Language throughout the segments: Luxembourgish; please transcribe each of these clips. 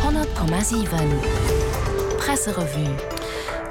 100,7 Presserevue.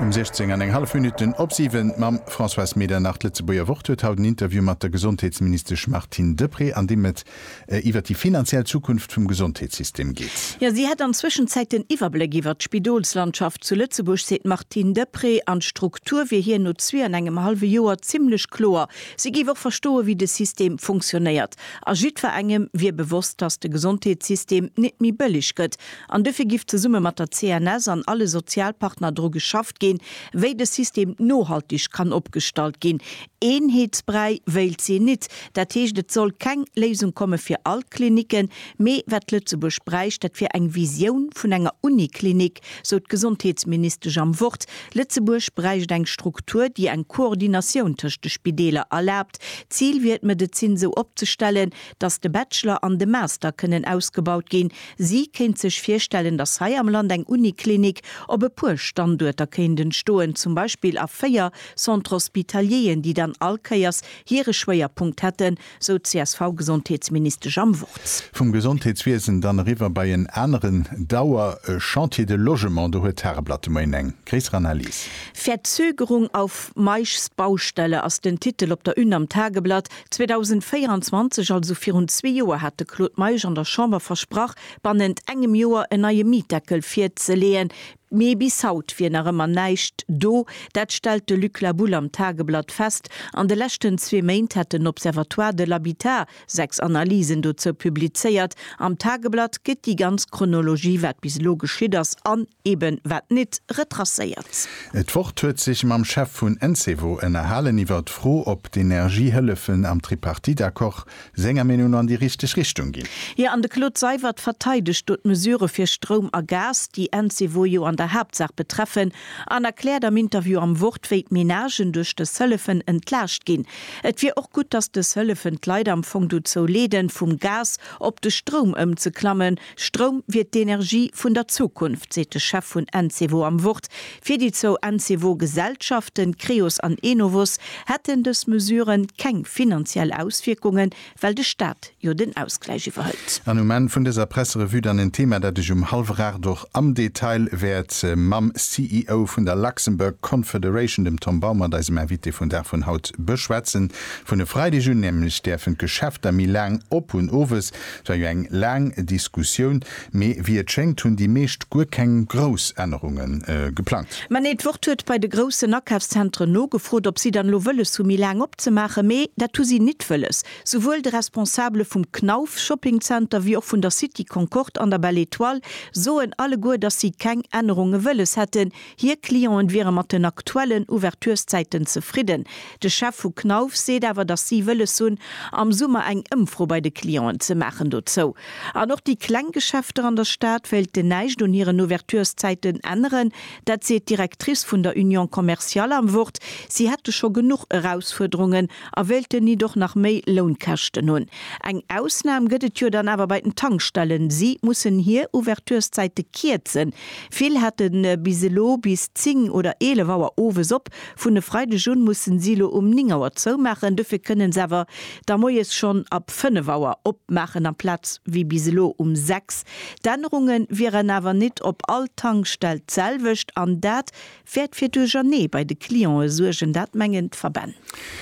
Um 16 an eng hallef Minutten op siwen mam Françoise Medernach. D'Lëtzebuerger Wort huet haut en Interview mat der Gesondheetsministesch Martine Deprez, an deem et iwwer déi finanziell Zukunft vum Gesondheetssystem geet. Jo, si hätt an Zwëschenzäit den Iwwerbléck iwwert d'Spidolslandschaft zu Lëtzebuerg, seet d'Martine Deprez. An d'Struktur wier hir no zwee an engem hallwe Joer zimmlech kloer. Si géif och verstoen, wéi de System funktionéiert. A jiddferengem wier bewosst, dass de Gesondheetssystem nit méi bëlleg gëtt, an dofir giff zesumme mat der CNS an alle Sozialpartner dru geschafft ginn, wéi de System nohaltig kann opgestallt ginn. Eenheetsbräi wéilt si nit, dat heescht, et soll keng Léisung komme fir all d'Klinicken, mee wat Lëtzebuerg bräicht, dat wier eng Visioun vun enger Uniklinik, sou d'Gesondheetsministesch am Wort. Lëtzebuerg bräicht eng Struktur, déi eng Koordinatioun tëscht de Spideeler erlaabt. D'Zil wier et d'Medezin sou opzestellen, datt de Bachelor an de Master kënnen ausgebaut ginn. Si kéint sech virstellen, datt hei am Land eng Uniklinik op e puer Standuerter kéint entstoen, zum Beispill a véier Centres hospitalieren, déi dann all Kéiers hire Schwéierpunkt hätten, sou d'CSV-Gesondheetsministesch am Wort. Vum Gesondheetswiesen dann eriwwer bei en aneren Dauer, e Chantier de Logement. Do huet d'Tageblatt de Moien eng gréisser Analys. Verzögerung auf Meischs Baustelle ass den Titel op der Une am Tageblatt. 2024, also virun zwee Joer, hat de Claude Meisch an der Chamber versprach, bannent engem Joer en neie Mietdeckel virzeleeën. Mee bis haut wier nach ëmmer näischt do. Dat stellt de Luc Labulle am Tageblatt fest. An de leschten zwee Méint hätt den Observatoire de l'habitat sechs Analysen dozou publizéiert. Am Tageblatt gëtt déi ganz Chronologie, wat bis elo geschitt ass an eben wat nit, retracéiert. D'Wort huet sech mam Chef vun Encevo ënnerhalen iwwer d'Fro, ob d'Energiehëllefen am Tripartite-Accord senger Meenung no an déi richteg Richtung ginn. Jo, an de Claude Seywert verteidegt do d'Mesure fir Stroum a Gas, déi Encevo jo an der Haaptsaach betreffen, an erkläert am Interview am Wort, wéi d'Menagen duerch dës Hëllefen entlaascht ginn. Et wier och gutt, datt dës Hëllefen d'Leit am Fong dozou leeden, vum Gas op de Stroum ëmzeklammen. Stroum wier d'Energie vun der Zukunft, seet de Chef vun Encevo am Wort. Fir déi zwou Encevo-Gesellschaften, Creos an Enovos, hätten dës Mesure keng finanziell Auswierkungen, well de Staat jo den Ausgläich iwwerhëlt. An um Enn vun dëser Presserevue dann en Thema, dat ech um hallwer Aacht och am Detail wäert mam CEO vun der Luxembourg Confederation, dem Tom Baumert, eisem Invité vun Dag vun haut, beschwätzen. Vun e Freideg un nämlech däerfen d'Geschäfter méi laang op hunn, owes Et war jo eng laang Diskussioun, mee wéi et schéngt hunn déi meescht guer keng grouss Ännerunge geplangt. Mä nee, d'Wort huet bei de groussen Akafszentren nogefrot, ob si dann elo wëlles hu méi laang opzemaachen, mee dat hu si nit wëlles. Souwuel de Responsabele vum Knauf Shopping Center wéi och vun der City Concorde an der Belle Etoile soen alleguer, datt si keng Ännerunge wëlles hätten, Hir Clienten wiere mat den aktuellen Ouverturszäiten zefridden. De Chef vu Knauf seet awer, datt si wëlles hunn, am Summer eng Ëmfro bei de Clienten ze maachen dozou. An och déi kleng Geschäfter an der Stad wéilten näischt un hiren Ouverturszäiten änneren. Dat seet d'Directrice vun der Union Commerciale am Wort. Si hätte scho genuch Erausfuerderungen a wéilten nit och nach méi Lounkäschten hunn. Eng Ausnam gëtt et jo dann awer bei den Tankstellen. Si mussen hir Ouverturszäite kierzen, Vill hate bis elo bis 10 oder 11 Auer owes op. Vun e Freideg un mussen si elo um 9 Auer zoumaachen. Dofir kënnen se awer da moies schonn ab 5 Auer opmaachen amplaz wéi bis elo um 6. D'Ännerunge wieren awer nit op all Tankstell d'selwecht an dat wäert fir Duerchernee bei de Clientë suergen, dat mengen d'Verbänn.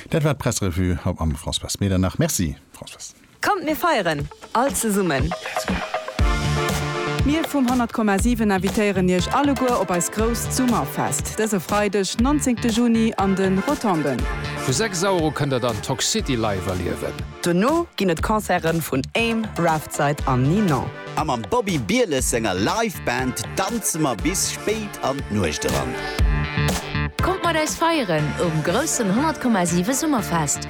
Dat war d'Pressrevue haut mam Françoise Medernach. Merci Françoise. Kommt mir feieren all zesummen! Mir vum 100,7 invitéieren iech alleguer op eist grousst Summerfest dëse Freideg 19 Juni an de Rotonden. Vu 6 Auer u kënnt der dann Toxcity live erliewen. Dono ginn et Concerten vun Aim, Raftside an Ninon. A mam Bobby Bieles senger Live Band danze mer bis spéit an d'Nuecht eran. Kommt mat eis feieren um groussen 100,7 Summerfest!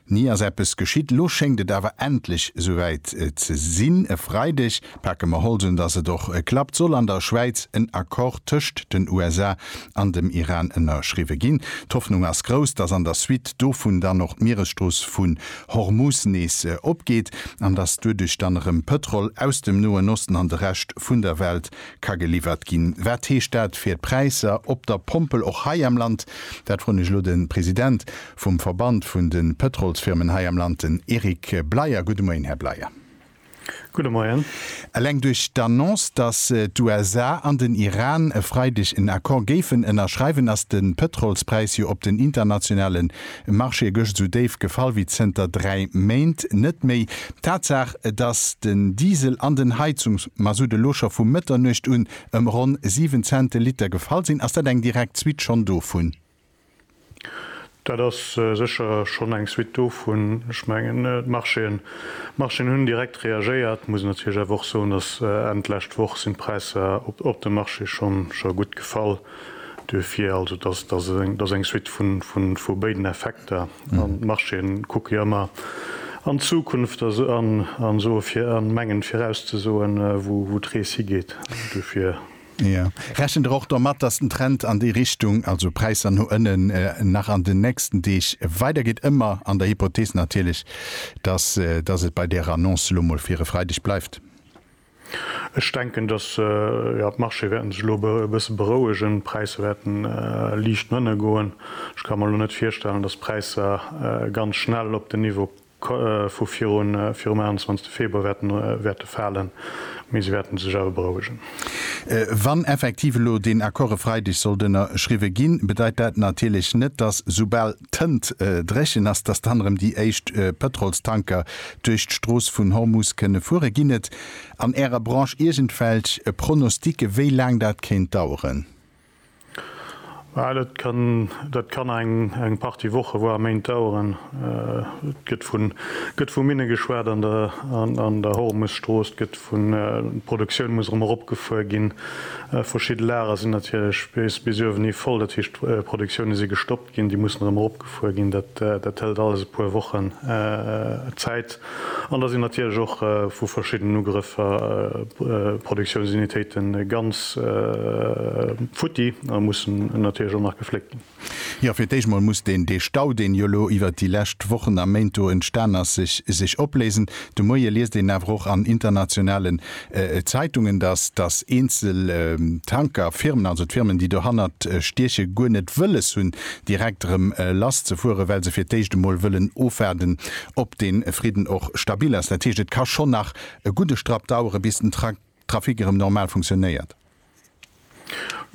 Ni ass eppes geschitt. Lo schéngt et awer endlech esouwäit ze sinn. E Freideg pake mer Holzem, dass et och klappt, soll an der Schwäiz en Accord tëscht den USA an dem Iran ënnerschriwwe ginn. D'Hoffnung ass grouss, dass an der Suite dovun dann och d'Mieresstrooss vun Hormuz nees opgeet an dass duerduerch dann erëm Pëtrol aus dem Noen Osten an de Rescht vun der Welt ka geliwwert ginn. Wat heescht dat fir d'Präisser op der Pompel och hei am Land? Dat froen ech elo de President. Vum Verband vun de Pëtrolsfirmen hei am Land, den Eric Bleyer. Gudde Moien, Här Bleyer. Gudde Moien. Eleng duerch d'Annonce, datt d'USA an den Iran e Freideg en Accord géifen ënnerschreiwen, ass de Pëtrolspräis jo op den internationale Marchéë gëscht esou déif gefall wéi zënter dräi Méint net méi. D'Tatsaach, datt den Diesel an den Heizungsmasutt elo scho vu Mëtternuecht un ëm ronn 7 Cent de Liter gefall sinn, ass dat eng direkt Suite schonn dovun? Dat ass sécher schonn eng Suite dovun. Ech mengen, d'Marchéen, d'Marchéen hunn direkt reagéiert. Muss natierlech awer och soen, datt Enn d'lescht Woch sinn d'Präisser op de Marchéë schonn scho gutt gefall. Duerfir also, datt, datt ass eng Suite vun, vun, vu béiden Effekter. An d'Marchéen kucke jo ëmmer an d'Zukunft a se, an, an soe fir, an mengen virauszesoen, wou, wou d'Rees higeet. Duerfir. Jo. Rechent Der och domat, dass den Trend an déi Richtung, also Präisser no ënnen, nach an den nächsten Deeg weidergeet, ëmmer an der Hypothees natierlech, dass dass et bei där Annonce elo mol fir e Freideg bleift? Ech denken, dass, jo, d'Marchée wäerte sech elo e bësse berouegen. D'Präisser wäerten liicht no ënne goen. Ech ka mer elo net virstellen, dass d'Präisser ganz schnell op den Niveau, vu virum 21 Februar wäerte falen, mee se wäerte sech awer berouegen. Wann effektiv elo deen Accord e Freideg sollt ënnerschriwwe ginn, bedeit dat natierlech net, dass soubal d'Tënt dréchen ass, dass dann erëm déi éischt Pëtrolstanker duerch d'Strooss vun Hormus kënne fueren. Ginn et an Ärer Branche iergendwelch Pronostike wéi laang dat kéint daueren? Dat kann eng Partie Woche, voire Méint daueren. Et gëtt vu Minne geschwat an der Hormusstrooss, et gëtt vu Produktioun muss erëm eropgefuer ginn. Verschidde Lager sinn natierlech bis uewen hi voll, dat heescht d'Produktioune si gestoppt. ginn, déi mussen erëm eropgefuer ginn, dat hëlt alles e puer Wochen Zäit an da sinn natierlech och vu verschiddenen Ugrëffer Produktiounsunitéite ganz futti a mussen natierlech och nach gefléckt ginn. Jo, fir d'éischt mol muss deen dee Stau, deen jo elo iwwert déi lescht Wochen a Méint do entstan ass, sech opléisen. De Moie liest een awer och an internationalen Zeitungen, dass dass eenzel Tanker Firmen, also d'Firmen déi dohannert stieche guer net wëlles hunn direkt erëm lass ze fueren, well se fir d'éischt emol wëllen ofwaarden ob de Fridden och stabil ass. Dat heescht et ka schonn nach e gudde Strapp dauere bis den Trafic erëm normal funktionéiert.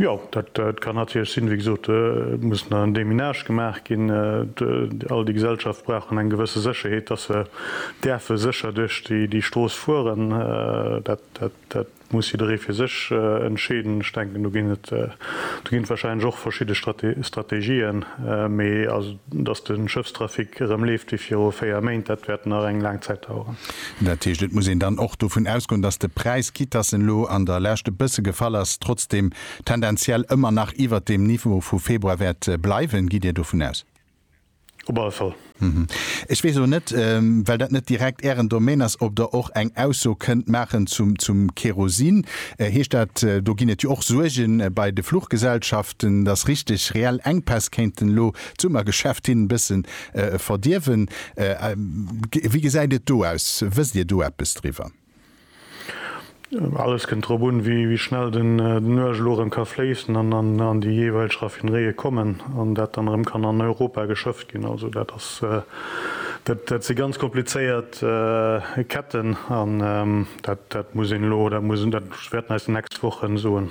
Jo, dat kann natierlech sinn. Wéi gesot, et muss nach en Deminage gemaach ginn. All déi Gesellschaft brauchen eng gewësse Sécherheet, dass se däerfe sécher duerch déi Strooss fueren. Dat muss jidderee fir sech entscheeden. Ech denken, do ginn et wahrscheinlech och verschidde Strategien. Datt de Schëffstrafic erëm leeft wéi viru 4 Méint, dat wäert nach eng laang Zäit daueren. Dat heescht, et muss een dann och dovun ausgoen, datt de Präis, quitt datt en elo an der Lescht e bësse gefall ass, trotzdeem tendenziell ëmmer nach iwwert deem Niveau vu Februar wäert bleiwen. Gitt Dir dovun aus? Op alle Fall. Ech weess elo net, well dat net direkt Ären Domaine ass, ob Der och eng Ausso kënnt maachen zum Kerosin. Heescht dat, do ginn et jo och Suerge bei de Fluchgesellschaften, Den ass richteg, reell Enkpäss kéinten elo d'Summergeschäft hin bëssen verdierwen. Wéi gesäit et do aus? Wësst Dir do eppes driwwer? Alles kënnt drop un, wéi schnell den Nuesch elo erëm ka fléissen an an déi jeeweilg Raffineréie kommen an dat dann erëm kann an Europa geschëfft ginn. Also dat ass, dat si ganz komplizéiert Ketten an dat muss een elo, dat muss, dat wäerten eis déi nächst Wochen soen.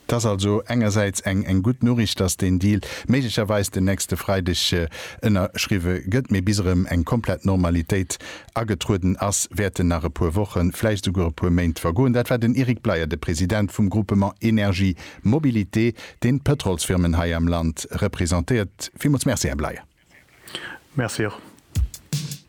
Et ass also engersäits eng gutt Noriicht, dass deen Deal méiglecherweis den nächste Freideg ënnerschriwwe gëtt, mee bis erëm eng komplett Normalitéit agetrueden ass, wäerten nach e puer Wochen, vläicht esouguer e puer Méint vergoen. Dat war den Eric Bleyer, de President vum Groupement Énergie Mobilité, deen d'Pëtrolsfirmen hei am Land representéiert. Villmools Merci, Här Bleyer. Merci och.